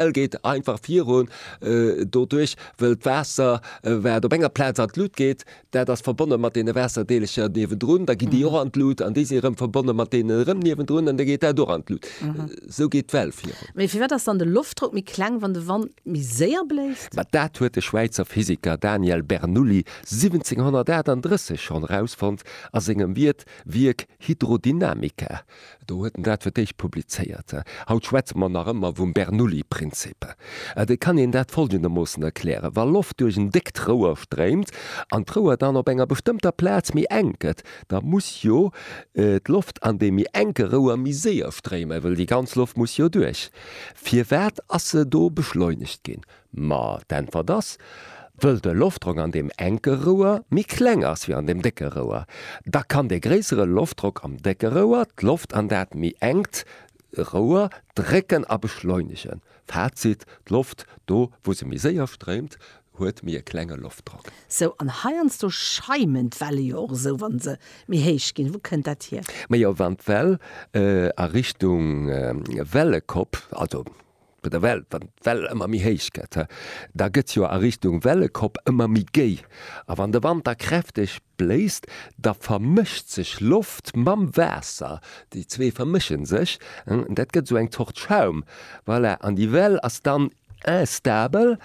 Well geet einfach virun doduerch, wëll d'Waasser wat op enger Plaz an d'Lut geet, dat ass verbonne mat deene Waasserdeelercher niewendrun, da ginn déi och an d'Lut an déi si erëm verbonne mat deene erëm niewendrun an da geet dat och an d'Lut. Esou geet d'Well virun. Mee firwat ass dann de Loftdrock méi kleng, wann de Wand méi séier bléist? Ma dat huet de Schwäizer Physiker Daniel Bernoulli 1738 schonn erausfonnt a sengem Wierk Hydrodynamica. Do huet en dat fir d'éischt publizéiert. Haut schwätze mer nach ëmmer vum Bernoulli-Prinzip. Et kann een dat follgendermoossen erklären, Wa Loft duerch en déckt Rouer stréimt an d'Rouer dann op enger bestëmmter Plaz méi enk gëtt, da muss jo d'Loft an deem méi enke Rouer méi séier stréimen, well déi ganz Loft muss jo duerch. Firwat ass se do beschleunegt ginn? Ma d'Äntwert ass, Wëll de Loftdrock an deem enke Rouer méi kleng ass wéi an deem décke Rouer, da kann dee gréissere Loftdrock am décke Rouer d'Loft an dat méi enkt Rouer drécken a beschleunegen. Fazit, D'Loft do, wou se méi séier stréimt, huet méi e klenge Loftdrock. Sou, an heiansdo schaimen d'Welle jo och esou, wa se méi héich ginn. Wou kënnt dat hier? Majo, wann d'Well a Richtung Wellekopp, also Bei der Well, wann d'Well ëmmer méi héich gëtt, da gëtt se jo a Richtung Wellekopp ëmmer méi géi. A wann de Wand da kräfteg bléist, da vermëscht sech Loft mam Waasser, déi zwee vermëschen sech, dat gëtt esou eng Zort Schaum, voilà, an déi Well ass dann instabel.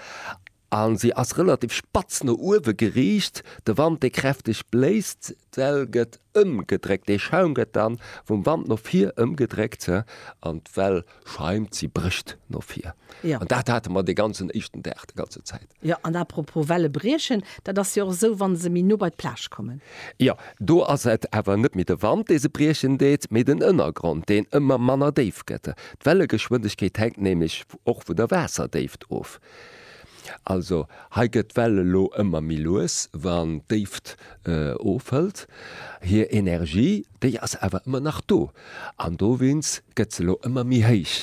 A se ass relativ spatz no uewe geriicht. De Wand, dee kräfteg bléist, d'Well gëtt ëmgedréckt. Dee Schaum gëtt da vum Wand no vir ëmgedréckt an d'Well schaimt, si brécht no vir. An dat hate mer dee ganzen éischten Dag, déi ganze Zäit. Jo, an apropos Welle briechen, dat ass jo och esou, wa se méi no bei d'Plage kommen. Jo, do ass et awer net méi de Wand, dee se briechen deet, mee den Ënnergrond, deen ëmmer manner déif gëtt. D'Wellegeschwindegkeet hänkt nämlech och vun der Waasserdéift of. Also hei gëtt d'Well elo ëmmer méi lues, wann d'Déift ofhëlt. Hir Energie, déi ass awer ëmmer nach do an dowéinst gëtt se elo ëmmer méi héich.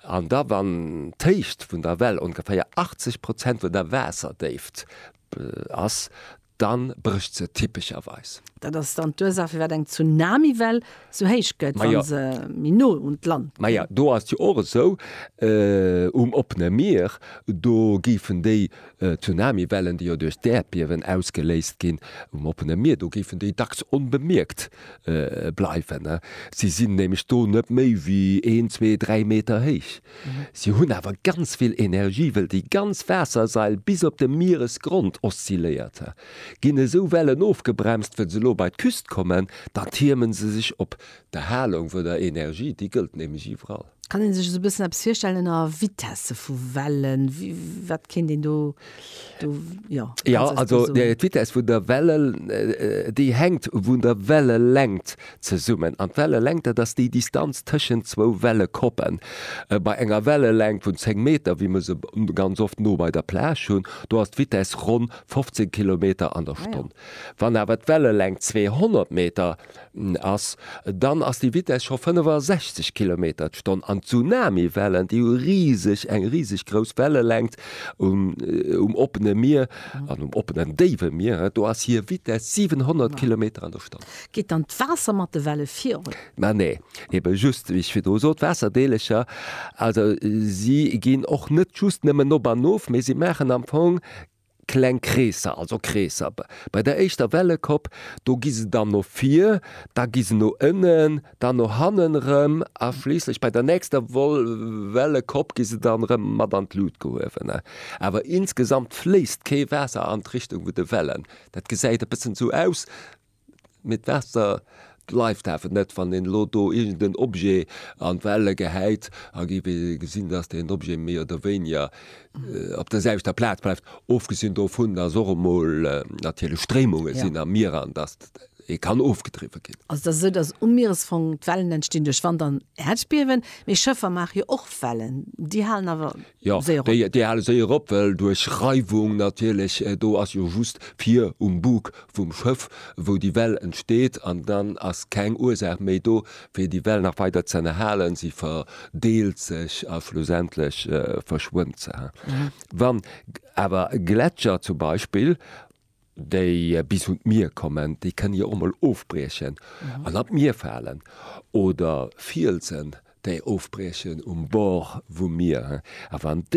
An da wann d'Héicht vun der Well ongeféier 80 Prozent vun der Waasserdéift ass, Dann brécht se typescherweis. Dat ass dann d'Ursach firwat eng Tsunamiwell sou héich gëtt, wa se méi no un d'Land kënnt. Maja, do ass jo och esou, um oppene Mier, do géifen déi Tsunamiwellen, déi jo duerch d'Äerdbiewen ausgeléist ginn um oppene Mier, do géifen déi dacks onbemierkt bleiwen. Si sinn nämlech do net méi wéi een, zwee, dräi Meter héich. Si hunn awer ganz vill Energie, wëll déi ganz Waassersail bis op de Mieresgrond oszilléiert. Ginn esou Wellen ofgebremst, wëll se lo bei d'Küst kommen, dann tiermen se sech op. D'Erhalung vun der Energie, déi gëllt nämlech iwwerall. Kann een sech esou bëssen eppes virstellen ënner Vitesse vu Wellen? Wat kéint een do Du, jo. Ja, also d'Vitess vun der Welle, déi hänkt vun der Wellelängt zesummen. An d'Wellelängt, dat ass déi Distanz tëschent zwou Wellekoppen. Bei enger Wellelängt vun 10 Meter, wéi mer se ganz oft no bei der Plage hunn, do ass d'Vitess ronn 15 Kilometer an der Stonn. Wann awer d'Wellelängt 200 Meter ass, dann ass déi Vitess scho 65 Kilometer d'Stonn an d'Tsunamiwellen, déi hu riseg, eng riseg grouss Wellelängt um oppene Mier an um oppenen, déiwe Mier, do ass hir Vitess 700 Kilometer an der Stonn. Geet dann d'Waasser mat de Welle virun? Ma nee, ebe just, wéi ech virdru sot, d'Waasserdeelecher, also si ginn och net just nëmmen op an of, mee si maachen am Fong kleng Kreesser, also Kreesser, bei der éischter Welle Kopp, do gi se dann no vir, da gi se no ënnen, dann no hannen erëm a schliisslech bei der nächster Welle Kopp gi se dann erëm mat an d'Lut gehuewen. Awer insgesamt fléisst kee Waasser an d'Richtung vun de Wellen. Dat gesäit e bëssen esou aus, Mee d'Waasser bleift awer net. Wann een elo do iergend en Objet an d'Welle gehäit, a géif ee gesinn, datt deen Objet méi oder wéiniger op der selwechter Plaz bleift, ofgesinn dovun, datt och emol natierlech Stréimunge sinn am Mier an datt ee kann ofgedriwwe ginn. Also et ass esou, datt um Mieresfong d'Wellen entstinn duerch Wand an Äerdbiewen, mee Schëffer maache jo och Wellen, déi halen awer. Jo, déi hale séier op, well duerch Reiwung natierlech, do ass jo just vir um Bug vum Schëff, wou déi Well entsteet an dann ass keng Ursaach méi do, fir déi Well nach weider ze ënnerhalen. Si verdeelt sech a schlussendlech verschwënnt se. Wann awer e Gletscher zum Beispill déi bis un d'Mier kommen, déi kënne jo och mol ofbriechen an an d'Mier falen oder Fielsen, déi ofbriechen um Bord vum Mier, a wann.